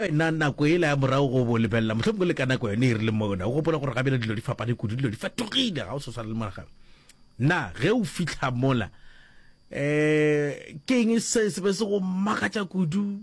Wena, nako yela ya morago go bo lebelela, mohlomongwe le ka nako yone e rile mona, o gopola gore gabjale dilo di fapane kudu, dilo di fetogile, ga o sa swana le mola gabjale. Na ge o fihla mola, um ke eng se se be se go makatša kudu,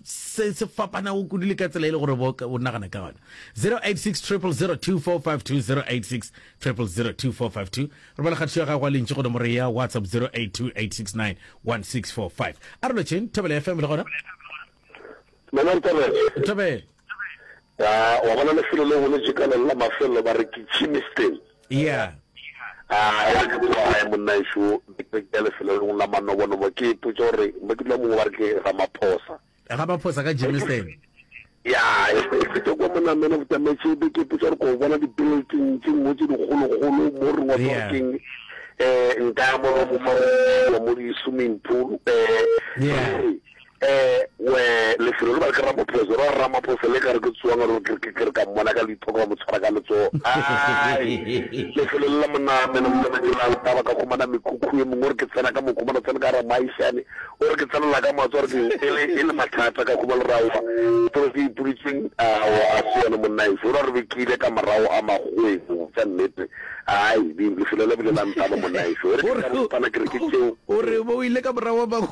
se se fapanago kudu le ka tsela e le gore bo o nagana ka gona? 086 000 2452 086 000 2452 re bala kgatišo ya gago a lentši go nomoro ya whatsapp 0828691645 a re lotšheng thobela fm le gona Mama Ntabele. Ntabele. Ya, wa bona lefelo le go le jekaleng la mafelelo ba re ke Chimiston. Yeah. A ya ke kwa gae monna ešo ke ya lefelo le la manobonobo ke ipotsa gore mo ke dula mongwe ba re ke Ramaphosa. Ramaphosa ka Chimiston. Ya, e fete kwa monna mena botametse be ke ipotsa gore ko bona di-building tse nngwe tse dikgolokgolo mo re ngwa keng eh nka mo mo di swimming pool eh Eh we lefelo le ba ke ramaphosa ra ramaphosa le ka re ke tsoang re ke ke re ka mmona ka leitho ka mo tshwara ka letso ai lefelo le la moname le le ke la taba ka khumana mekhukhu e mongwe re ke tsena ka mokhumana tsena ka ra maishane o re ke tsena la ka matso re ke ele ele mathata ka khumana ra wa tlo ke ipulitseng a wa a se yona monna e fora re bekile ka morao a magwebo tsa nnete ai lefelo le bile la ntaba monna e fora ke re ke tseo o re bo ile ka morao a magwebo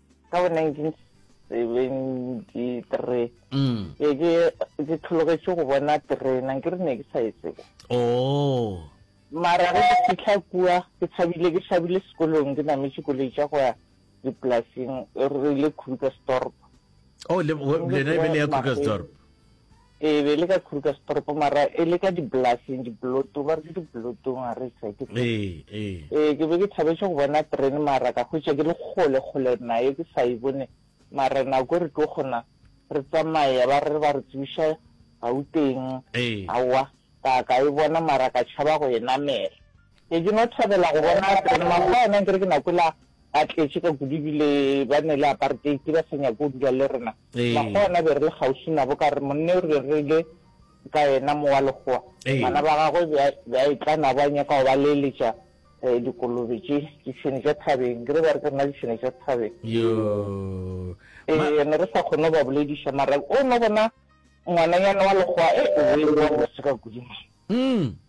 ka bo 1973 mm. ke ke tlhologetše go bona terena ke re ne ke sa e tsebo oh. mara ge ke fitlha kua ke tshabile ke tshabile sekolong ke nametše koloi tša go ya dipolaseng re ile krugersdorp oh, lena e be le ya krugersdorp Ee, be e le ka Krugersdorp mara e le ka dipolaseng, dipolotong, ba re ke dipolotong a re se ke tsebe. Ee, ee. Ee, ke be ke thabetše go bona terene mara ka hwetša ke le kgole, kgole nayo ke sa e bone mara nako e re tlo kgona re tsamaye ba re ba re tsebiša Gauteng, aowa ka ka e bona mara ka tšhaba go e namela. Be ke no thabela go bona Adrian mago a yena nkere ke na kwela a tletše ka kudu ebile ba ne le apartheid ba sa nyake go dula le rena. Mago a yena be re le kgauswi nabo ka re monne o re be re ile ka yena mo wa legoa. Bana ba gagwe be a be a etla nabo a nyaka go ba leeletša eh dikolobe tše ditšhwene tša thabeng nkere ba re ke rena ditšhwene tša thabeng. Yoo eh ne re sa kgone go ba bolediša mara o no bona ngwananyana wa legoa eh o boe o ba mose ka kudu man.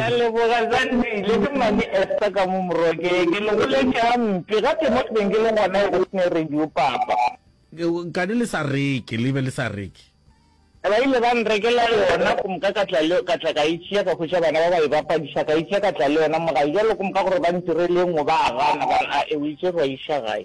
a leboga Zandile, ke Mmane Esther ka mo Morokeng, ke le goletše gampe gape mo ke beng ke le gona e go sne radio papa. Kane le sa reke, le be le sa reke. Ba ile ba nrekela yona go moka ka tla le, ka tla ka e tšea ka hwetša bana ba ba e bapadiša, ka e tšea ka tla le yona mo gae, bjalo go moka gore ba ntirele e nngwe ba gana, ba re ae o e tšere wa e iša gae.